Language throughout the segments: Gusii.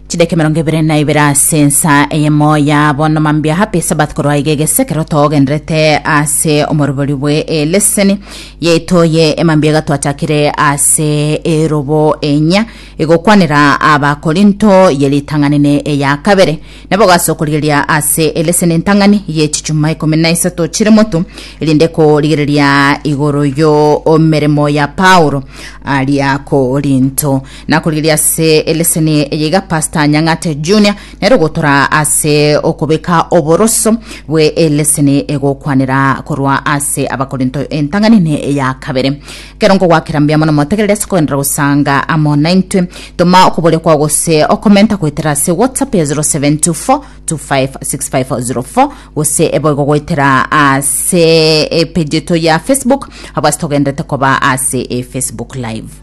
chidaki mirongo ibere na ibere ase ensa eyemo ya bono mambia happy sabath korwa iga egesekero togenderete ase omorobori bwe eleseni yaito ye emambia iga twachakire ase erobo enya igokwanera abakorinto ye ritang'anene eya kabere nabo gase okorigereria ase eleseni entang'ani ye chichuma ikomi na isato chire motu erinde korigereria igoro yo omeremo ya paulo aria korinto Na korigereria ase eleseni eye iga Pastor Nyang'ate Junior nere ogotora ase okobeka oboroso bwe eleseni egokwanera korwa ase Abakorinto entang'ani ne eya kabere. Kero nkogwakera mbuya mono motegerere ase kogenderera gosanga amo naintwe. Toma okoboria kwao gose okomenta goetera ase WhatsApp ya 0724 256504 gose eboigo goetera ase epeji eto ya Facebook abase togenderete koba ase e Facebook live.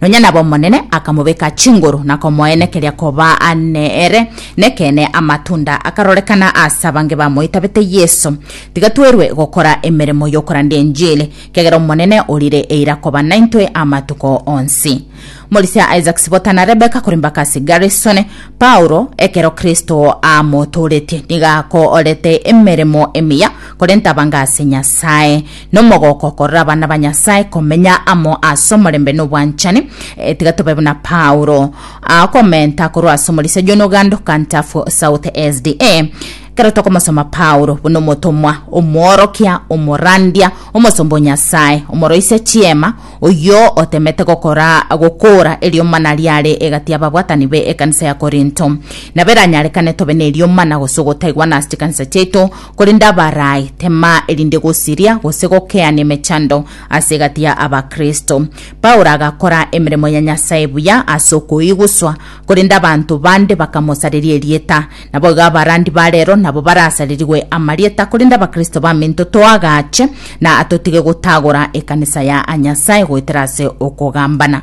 Nonya nab'Omonene akamobeka chinguru na komoenekeria koba nere. Nekeene amatunda akarorekana as'abange bamoitabete Yeso. Tiga twerwe gokora emeremo y'okorandia enjili, kiagera Omonene orire eira koba naintwe amatuko onsi. Morisia Isaac Sibota na Rebecca kore Mbakasi Garrison, Paulo, ekero Kristo amotoretie nigo akoorete emeremo emiya, korenta abange ase Nyasae. Nomogooko okorora abana ba Nyasae komenya amo ase omorembe na obwanchani, eh, tiga tobe buna Paulo, ah, okomenta korwa ase omorisa John Ogando, Kantafu, South SDA. Kero tokomosoma Paulo buna omotomwa, omworokia, omorandia, omosomba o Nyasae, omoroisia chiema, oyio otemete gokora gokoora erioma na riare egati y'ababwatani be ekanisa ya Korinto. Nabo eranyarekane tobe n'erioma na gose ogotaigwa na ase chikanisa chiaito, Korende abarai temaa erinde gosiria gose gokeania emechando ase egati ya Abakristo. Paulo agakora emeremo ya Nyasae buya ase okoiguswa, korende abanto bande bakamosareria erieta. Naboigo abarandi ba rero nabo barasarerigwe amarieta, korende Abakristo baminto toagache na totige gotagora ekanisa ya Nyasae goetera ase okogambana.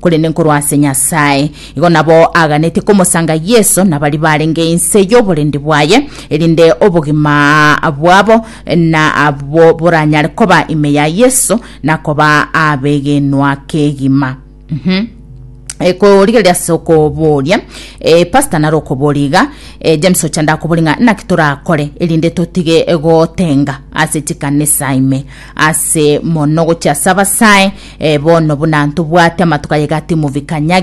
korende nkorwa ase Nyasae. Igo nabo aaganetie komosanga Yeso nabari barenge inse y'oborindi bwaye, erinde obogima bwabo na abwo boranyare koba ime ya Yeso na koba abegenwa kegima. Mhm. Eh, korigereria ase okoboria eh, pastor naro okoboria iga eh, james ochanda akoboria ng'a naki torakore erinde totige gotenga ase chikanisa ime Ase mono gochia ase abasae, ee bono buna ntobwate amatuko ayegati mubikanyage.